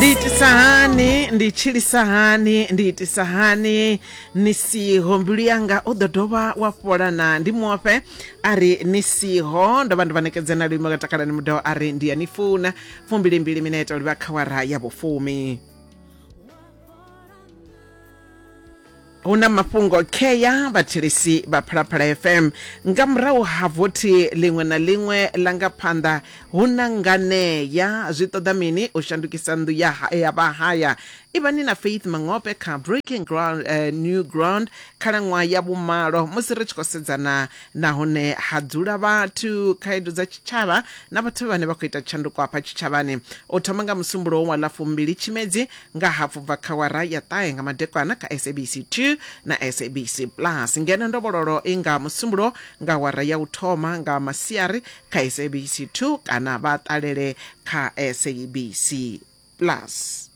ndi itisa hani ndi tshilisa hani ndi itisa hani ni siho mbilu yanga u ḓo dovha wa fhola na ndi mufhe a ri ni siho ndo vha ndi vha nekedza na luimo ka takalani mudao a ri ndi ya ni funa fumbilimbili minete uri vha khawara ya vhufumi hu na mafhungo khea vhathetshelesi vha phalaphala fm nga murahu ha vothi ḽiṅwe na ḽiṅwe ḽa nga phanḓa hu na nganea zwi ṱoḓa mini u shandukisa nnḓu ya ha- ya vhahaya ivhani na faith mangope kha breaking ground eh, new ground khalaṅwaha ya vhumalo musi ri tshi khou sedzana nahone ha dzula vhathu khaedu dza tshitshavha na vhathu vhane vha khou ita tshanduko hafha tshitshavhani u thoma nga musumbulowo wa ḽa fumbili tshimedzi Nga hafhu bva kha awara ya ṱahe nga madekwana kha SABC 2 na SABC Plus, ngeno ndovhololo i nga Musumbulo nga awara ya u thoma nga masiari kha SABC 2 kana vha ṱalele kha SABC Plus.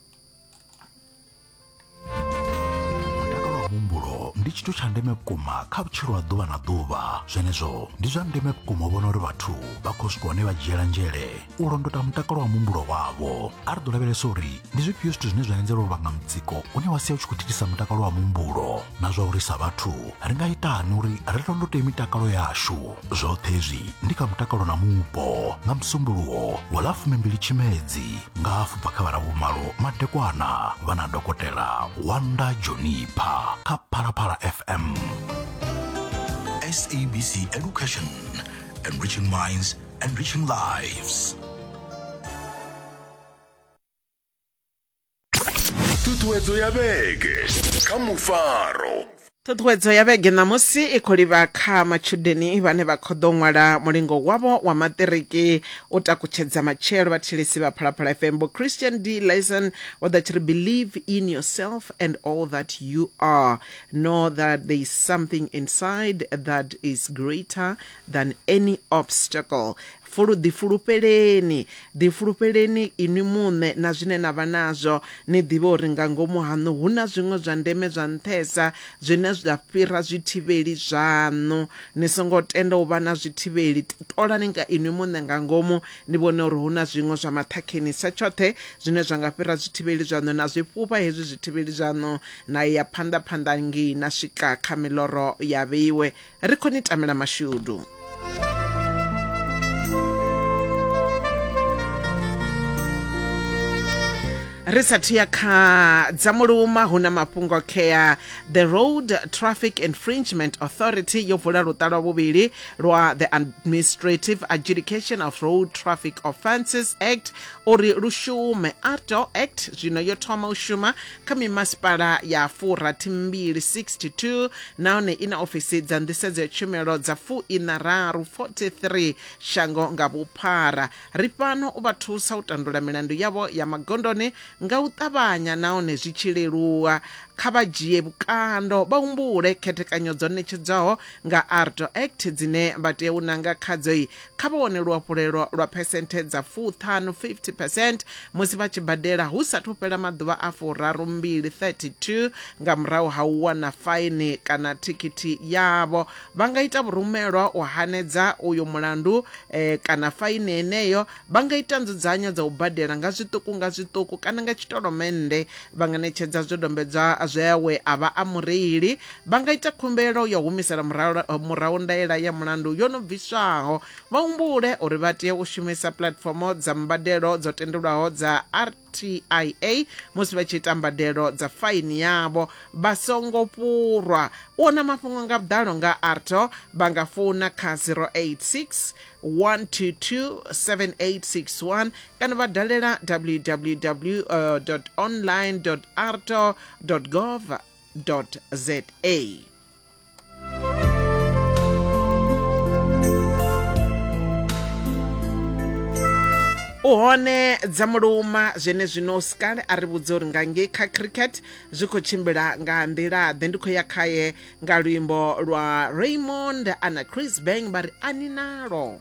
Mutakalo wa muhumbulo ndi tshithu tsha ndeme vhukuma kha vhutshilo ha ḓuvha na ḓuvha zwenezwo ndi zwa ndeme vhukuma u vhona uri vhathu vha khou swika hune vha dzhiela nzhele u londota mutakalo wa muhumbulo wavho a ri ḓo lavhelesa uri ndi zwifhio zwithu zwine zwa anzela uri vhanga mutsiko une wa sia u tshi khou thithisa mutakalo wa muhumbulo na zwa uri sa vhathu ri nga itani uri ri londote mitakalo yashu zwoṱhe hezwi ndi kha mutakalo na mupo nga musumbuluwo wa ḽa fumimbili tshimedzi nga hafu bva kha vharavhumalo madekwana vha na dokotela wanda jonipha kha phalaphala fm SABC Education, enriching minds Enriching lives. Tutuedzo ya vhege kha mufaro. ṱhuṱhuwedzo ya vhege ṋamusi i khou livha kha matshudeni vhane vha khou ḓo ṅwala mulingo wavho wa maṱiriki u takutshedza matshelo vhatshilisi vha phalaphala fm vho christian d lison vho ḓa tshi ri believe in yourself and all that you are know that there is something inside that is greater than any obstacle fulu ḓifulufheleni ḓifulufheleni inwi muṋe na zwine na vha nazwo ni ḓivhe uri nga ngomu haṋu hu na zwiṅwe zwa ndeme zwa nṱhesa zwine zwa fhira zwithivheli zwaṋu ni songo tenda u vha na zwithivheli ṱolani nga inwi muṋe nga ngomu ni vhone uri hu na zwiṅwe zwa maṱhakheni sa tshoṱhe zwine zwa nga fhira zwithivheli zwaṋu na zwi fhufha hezwi zwithivheli zwaṋu na ya phanḓa phanḓa ngei na swika kha miloro ya vheiwe Ri khou ni tamela mashudu. ri sathu ya kha dza muluma hu na mafhungo khea the road traffic infringement authority yo vula luṱa lwa vhuvhili lwa the administrative adjudication of road traffic offences act uri lu shume arto act zwino yo thoma u shuma kha mimasipala ya furathi mbili 62 nahone i na ofisi dza nḓisedzo ya tshumelo dza fuiṋa raru 43 shango nga vhuphara ri fhano u vha thusa u tandula milandu yavho ya magondoni nga u ṱavhanya nahone zwi tshi leluwa kha vha dzhie vhukando vha humbule khethekanyo dzo ṋetshedzwaho nga ardo act dzine vha tea u nanga khadzo kha vha wane luhafhulelo lwa phesenthe dza fuṱhanu, 50 percent, musi vha tshi badela hu sathu fhela maḓuvha a furarumbili, 32, nga murahu ha u wana faini kana thikhithi yavho. Vha nga ita vhurumelwa u hanedza uyo mulandu eh, kana faini heneyo. Vha nga ita nzudzanyo dza u badela nga zwiṱuku nga zwiṱuku kana nga tshitolomennde. Vha nga ṋetshedza zwidombedzwa zwe we a vha a mureili Vha nga ita khumbelo ya u humisela murahu ndaela ya mulandu yo no bviswaho. Vha humbule uri vha tea u shumisa puḽatifomo dza mbadelo dzo tendelwaho dza RTIA musi vha tshi ita mbadelo dza faini yavho vha songo fhurwa. U wana mafhungo nga vhuḓalo nga ARTO vha nga founa kha 086 122 7861 kana vha dalela www online arto gov za u hone dza muluma zwene zwino sikale a ri vhudza uri nga ngei kha cricket zwi khou tshimbila nga nḓila ḓe ndi khou ya khaye nga luimbo lwa raymond ana chris bang vha ri ani nalo